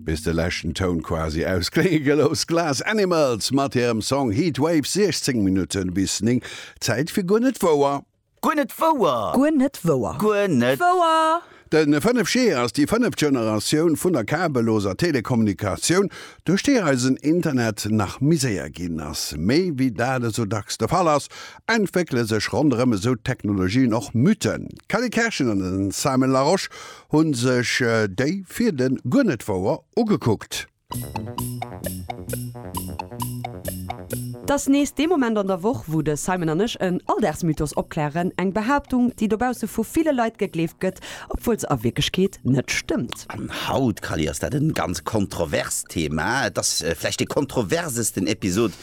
Bis de leschten Toun quasi ausklénge gelooss. Glass Animals mat hirem Song Heatwave, 16 Minutten bis 9. Zäit fir Guer net wouer. Guer net wouer! Guer net wouer! Guer net wouer! De 5G ass déi fënneft Generatioun vun der kabelloser Telekommunikatioun, duerch déi eisen Internet nach méi séier ginn ass. Mee wéi dat esou dacks de Fall ass, entwéckele sech ronderëm esou Technologien och Mythen. D'Kelly Kerschen an den Simon Larosche Hu sech déi fir den Guernet-Wouer ugekuckt. T'ass nees dee Moment an der Woch, wou de Simon an ech en Alldagsmythos opklären, eng Behaaptung, déi dobausse vu ville Leit gegleeft gëtt, obwuel se a Wierklechkeet net stëmmt. An haut, Kally, ass dat e ganz kontroverst Thema. Et ass vläicht dee kontroversesten Episod,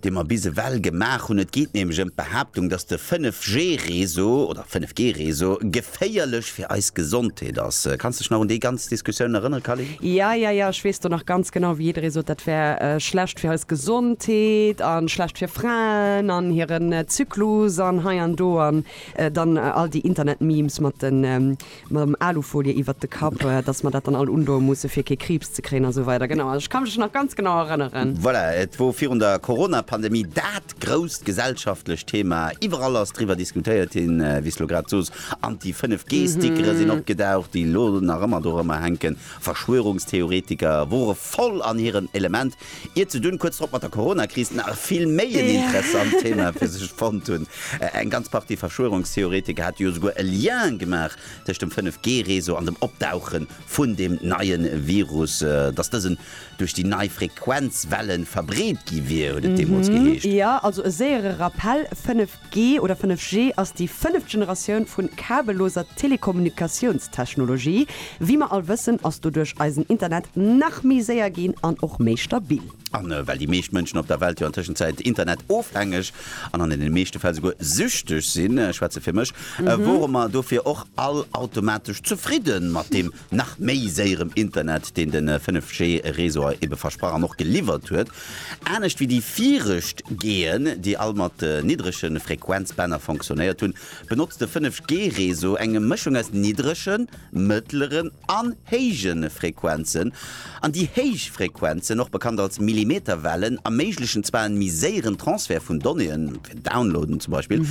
dee mer bis ewell gemaach hunn. Et geet nämlech ëm d'Behaaptung, dass de 5G-Réseau oder 5G-Réseau geféierlech fir eis Gesondheet ass. Kanns dech nach un déi ganz Diskussioun erënnere, Calin? Ja, ja, ja, ech weess do nach ganz genau, wéi jidderee sot, dat wär schlecht fir eis Gesondheet a schlecht fir Fraen an hiren Zyklus an hei an do an dann all déi Internet-Memes mat de mam Alufolie iwwert de Kapp, dass mer dat dann all undoe musse fir kee Kriibs ze kréien a sou weider. Genau, ech ka mech nach ganz genau erënneren. Voilà, et wor virun der Coronapandemie dat grousst gesellschaftlecht Thema. Iwwerall ass driwwer diskutéiert ginn, wéi s lo grad sos. An déi 5 G-Stickere sinn opgedaucht, déi lo nach ëmmer dorëmmer hänken. Verschwörungstheoretiker wore voll an hirem Element. Ier ze dunn, kuerz drop mat der Corona-Kris, nach vill méi en interessant Thema fir sech fonnt hunn. Eng ganz Partie Verschwörungstheoretiker hate jo souguer e Lien gemaach tëscht dem 5G-Réseau an dem Opdauche vun deem neie Virus, dass dësen duerch déi nei Frequenzwellen verbreet gi wier, huet et deemools geheescht. Jo, also e séiere Rappell, 5G 5G oder 5G ass déi fënneft Generatioun vun kabelloser Telekommunikatiounstechnologie. Wéi mer all wëssen, ass doduerch eisen Internet nach méi séier ginn an och méi stabil. A well déi meescht Mënschen op der Welt jo an Tëschenzäit Internet-ofhängeg an an deene meeschte Fäll souguer süchteg sinn, ech schwätze fir mech, wore mer dofir och all automatesch zefridde mat deem, nach méi séierem Internet, deen de 5G Réseau ebe versprach an och geliwwert huet, anescht wéi déi virecht Geen, déi all mat niddrege Frequenzbänner fonctionnéiert hunn, benotzt de 5G Réseau eng Mëschung aus niddregen, mëttleren an héije Frequenzen. An déi héich Frequenzen, och bekannt als Millimeterwellen, erméiglechen zwar en méi séieren Transfert vun Donnéeën, fir Downloaden zum Beispill,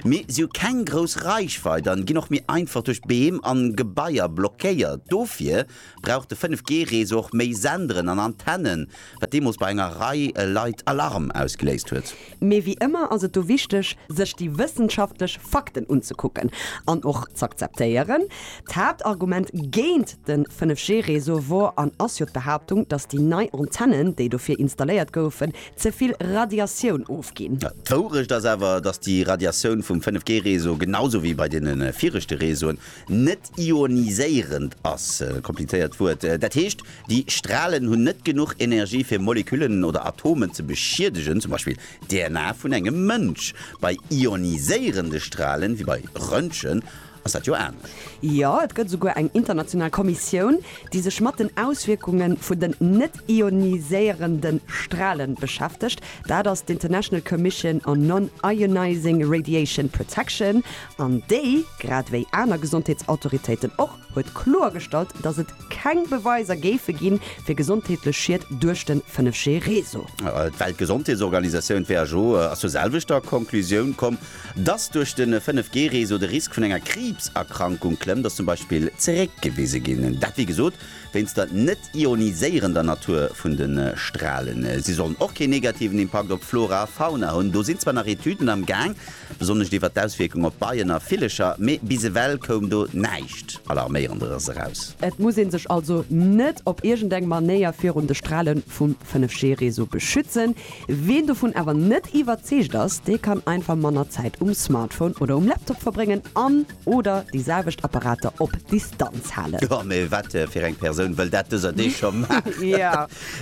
mee si hu keng grouss Reichweit an ginn och méi einfach duerch Beem an Gebaier blockéiert. Dofir brauch de 5G Réseau och méi Senderen an Antennen, wat deemools bei enger Rei Leit Alarm ausgeléist huet. Mee wéi ëmmer ass et do wichteg, sech déi wëssenschaftlech Fakten unzekucken an och z'akzeptéieren. D'Haaptargument géint de 5G-Réseau wor an ass jo d'Behaaptung, datt déi nei Antennen, déi dofir installéiert goufen, ze vill Radiatioun ofginn. D'Wourecht ass awer, datt déi Radiatioun vum 5G-Réseau, genau sou wéi bei deene viregte Réseauen, net ioniséierend ass, e komplizéiert Wuert, dat heescht, déi Stralen hunn net genuch Energie fir Moleküllen oder Atomen ze beschiedegen, zum Beispill d'DNA vun engem Mënsch. Bei ioniséierende Stralen, wéi bei Röntgen, ass dat jo anescht. Jo, et gëtt esouguer eng international Kommissioun, déi sech mat den Auswierkunge vun den net ioniséierende Strale beschäftegt, dat ass d'International Commission on Non-Ionizing Radiation Protection, An déi, grad wéi aner Gesondheetsautoritéiten och, huet kloergestallt, datt et keng Beweiser géife ginn, fir gesondheetlech Schied duerch de 5G-Réseau. D'Weltgesondheetsorganisatioun, who, ass zur selwechter Conclusioun komm, datt duerch de 5G-Réseau de Risk vun enger Kriibserkrankung klëmmt, ass zum Beispill zeréckgewise ginn. Dat, wéi gesot, wéinst der net-ioniséierender Natur vun de Stralen. Si sollen och keen negativen Impakt op d'Flora a Fauna hunn. Do sinn zwar nach Etüden am Gaang, Attack, besonnesch iwwer d'Auswierkung op Beien a Villecher, mee bis ewell koum do näischt Alarméierenderes eraus. Et muss ee sech also net op iergend eng Manéier virun de Strale vum 5G-Réseau beschützen. Ween dovun awer net iwwerzeegt ass, dee kann einfach manner Zäit um Smartphone oder um Laptop verbréngen an, Oder déi selwecht Apparater op Distanz halen. Oh, mee wat fir eng Persoun wëll dat dëser Deeg scho maachen?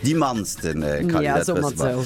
Déi mannsten kann een dat wësse mol.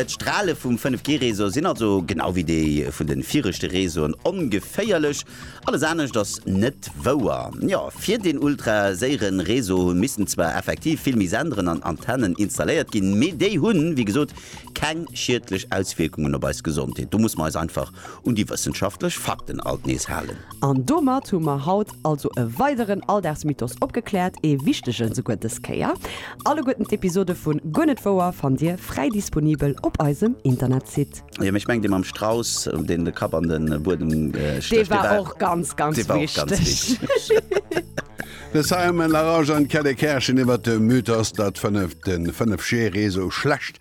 D'Strale vum 5G-Réseau sinn also, genau wéi déi vun de viregte Réseauen, ongeféierlech. Alles anescht ass net wouer. Jo, fir deen ultraséiere Réseau missten zwar effektiv vill méi Senderen an Antennen installéiert ginn, mee déi hunn, wéi gesot, keng schiedlech Auswierkungen op eis Gesondheet. Do musse mer eis einfach Un déi wëssenschaftlech Fakten alt nees halen. An domat hu mer haut also e weideren Alldagsmythos opgekläert, ee wichtegen esouguer dës Kéier. Alleguerten d'Episode vun Guer net wouer fannt Dir fräi disponibel op eisem Internetsite. Jo, mee ech mengen dee mam Strauss, deen de Kapp an de Buedem stécht, dee war. Dee war och ganz, ganz wichteg. De Simon Larose an d'Kelly Kerschen iwwer de Mythos, datt fënneft de Fënnefjäree sou schlecht